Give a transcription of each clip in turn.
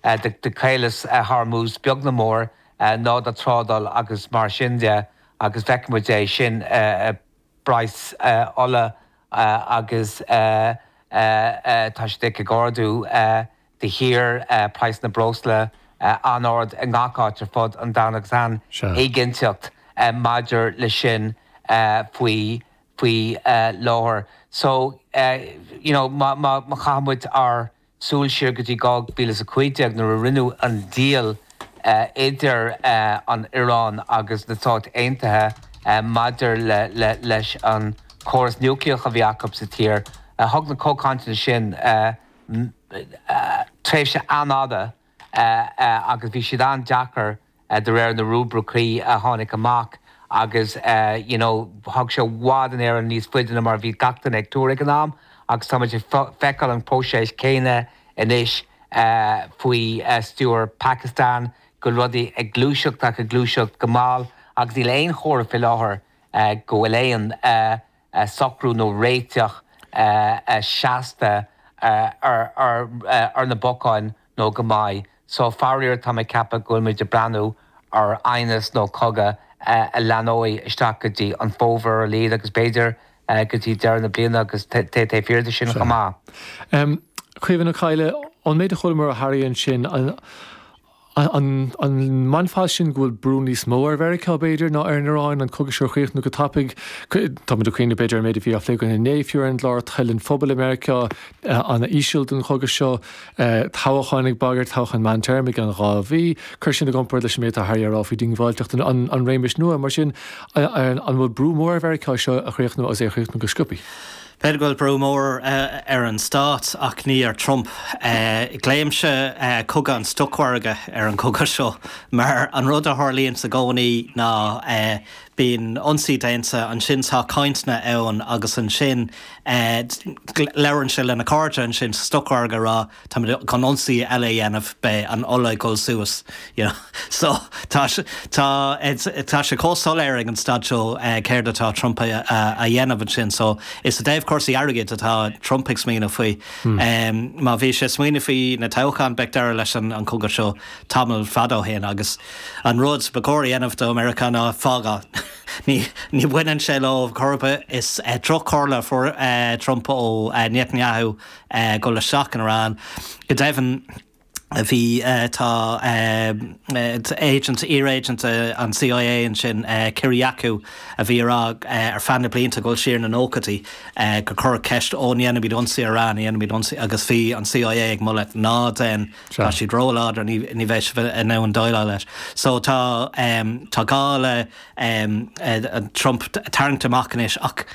a do chaeileas a tháirmiús beag na mór ná do trádáil agus mar sin de agus feiceann muid é sin i bpraghas ola agus tá siad ag ardú de shíor, praghas na breosla an-ard i ngach áit ar fud an domhain agus an-éiginnteacht maidir leis sin faoi láthair. So, you know, má chaitheann muid ár Súil siar go dtí 2015 nuair a rinneadh an deal idir an Iaráin agus na Stáit Aontaithe maidir leis an córas núicléach a bhí acu sa tír. Thug na comhchainteanna sin tréimhse an-fhada agus bhí siad an-deacair de réir na rúibricí a tháinig amach agus you know thug sé i bhfad Éireann níos faide ná mar a bhí gach duine ag tuar ag an am agus táimid ag feiceáil an próiseas céanna anois faoi stiúir Phacastáin go bhfuil rudaí ag gluaiseacht ach ag gluaiseacht go mall agus níl aon chomhartha faoi láthair go bhfuil aon socrú nó réiteach seasta ar na bacáin nó go mbeidh so. Faraor, táim ag ceapadh go bhfuil muid ag breathnú ar aighneas nó cogadh a leanfaidh isteach go dtí an fómhar ar a laghad agus b'fhéidir go dtí deireadh na bliana agus tar éis sin chomh maith. Caoimhin Ó Cadhla, An méid a chualamar ó Harry ansin, An measann sibh go bhfuil brú níos mó ar Mheiriceá, b'fhéidir, ná ar an Iaráin an cogadh seo a chríochnú go tapaidh? Táimid ag cuimhneamh, b'fhéidir, ar an méid a bhí á phlé againn inné fiú ar an gclár, toil an phobail i Meiriceá an-íseal don chogadh seo, toghcháin ag bagairt, toghcháin meántéarma i gceann dhá mhí. Cuir sin i gcomparáid leis an méid atá Harry a rá faoi dhiongbháilteacht an réimis nua. Mar sin, an bhfuil brú mór ar Mheiriceá seo a chríochnú agus é a chríochnú go sciobtha? B'fhéidir go bhfuil brú mór ar an stát ach ní ar Trump. Glaoimse Cogadh an Stocmhargadh ar an gcogadh seo mar an rud a tharlaíonn sa gcónaí ná bíonn ionsaí déanta, ansin tá cainteanna ann agus ansin labhrann sé lena cairde ansin sa stocmhargadh a rá, táimid chun ionsaí eile a dhéanamh, beidh an ola ag dul suas, you know. So tá sé, tá, tá sé chomh soiléir ag an staid seo céard atá Trump a dhéanamh ansin. So is i dtaobh cúrsaí airgid atá Trump ag smaoineamh faoi. Má bhí sé ag smaoineamh faoi na toghcháin, bheadh deireadh leis an chogadh seo tamall fada ó shin agus an rud ba chóir a dhéanamh do Mheiriceá ná fágáil. Ní, ní bhaineann sé leo chor ar bith. Is trí chomhairle a fuair Trump ó Netanyahu. ag dul isteach in Iaráin. Go deimhin, bhí, tá, agent, iar-agent an CIÉ ansin, Kyriakou, a bhí ag rá ar feadh na blianta, ag dul siar sna nóchaidí, gur cuireadh ceist, Ó, an ndéanaimid ionsaí ar Iran, an ndéanaimid ionsaí? Agus bhí an CIA ag moladh, Ná déan, tá siad róláidir, ní bheidh sibh in ann déileáil leis. So tá, tá gá le Trump tarraingt amach anois ach,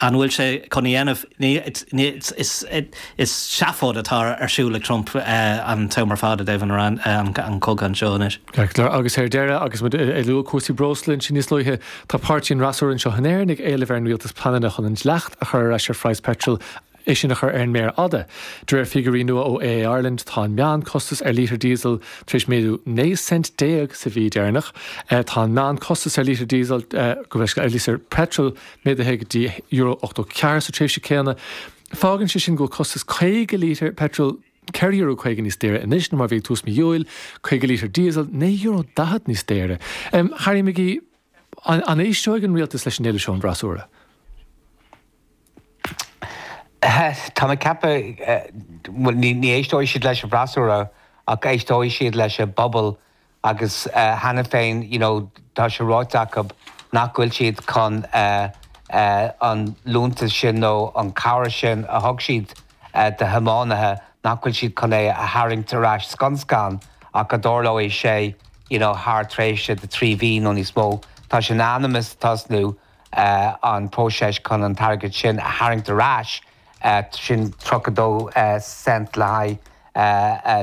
An bhfuil sé chun a dhéanamh? Ní, ní, is, is seafóid atá ar siúl ag Trump an t-am ar fad i dtaobh Iran, an cogadh anseo anois. Agus ar deireadh, agus muid ag lua cúrsaí breosla ansin níos luaithe, tá páirtithe an fhreasúra anseo in Éirinn ag éileamh ar an rialtas pleananna chun an dleacht a chur ar ais ar phraghas peitril, é sin a chur ar an méar fhada. De réir figiúirí nua ó AA Ireland, tá an meánchostas ar lítear díosail tar éis méadú 19 cent sa mhí deireanach. Tá an meánchostas ar lítear díosail, gabh mo leithscéal, ar lítear peitril, méadaithe go dtí euro ochtó ceathair sa tréimhse céanna. Fágann sé sin go bhfuil costas 50 lítear peitril ceithre Euro caoga níos daoire anois ná mar a bhí ag tús mhí Iúil, 50 lítear díosail naoi Euro daichead níos daoire. Harry McGee, An éisteoidh an rialtas leis an éileamh seo ón bhfreasúra? Tá mé ag ceapadh, bhuel ní éisteoidh siad leis an bhfreasúra ach éisteoidh siad leis an bpobal Agus cheana féin you know tá sé ráite acu nach bhfuil siad chun an liúntas sin nó an cabhair sin a thug siad do thiománaithe, nach bhfuil siad chun é a tharraingt ar ais scun scan ach go dtarlóidh sé you know thar tréimhse de trí mhí nó níos mó. Tá sé in ainm is tosnú an próiseas chun an t-airgead sin a tharraingt ar ais. sin 32 cent le haghaidh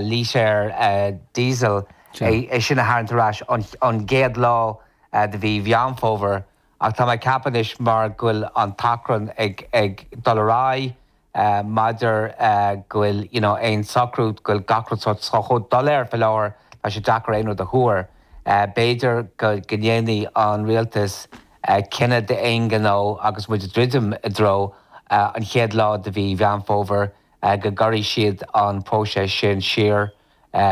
lítear Diesel, é sin a tharraingt ar ais ón gcéad lá de mhí Mheán Fómhair, ach tá mé ag ceapadh anois mar go bhfuil an t-achrann ag dul ar aghaidh mar nach bhfuil you know aon socrú, go bhfuil gach rud chomh doiléir faoi láthair tá sé deacair aon rud a thuar. B'fhéidir go ndéanfaidh an rialtas cinneadh d'aon ghnó agus muid ag druidim i dtreo an chéad lá de mhí Mheán Fómhair go gcuirfidh siad an próiseas sin siar.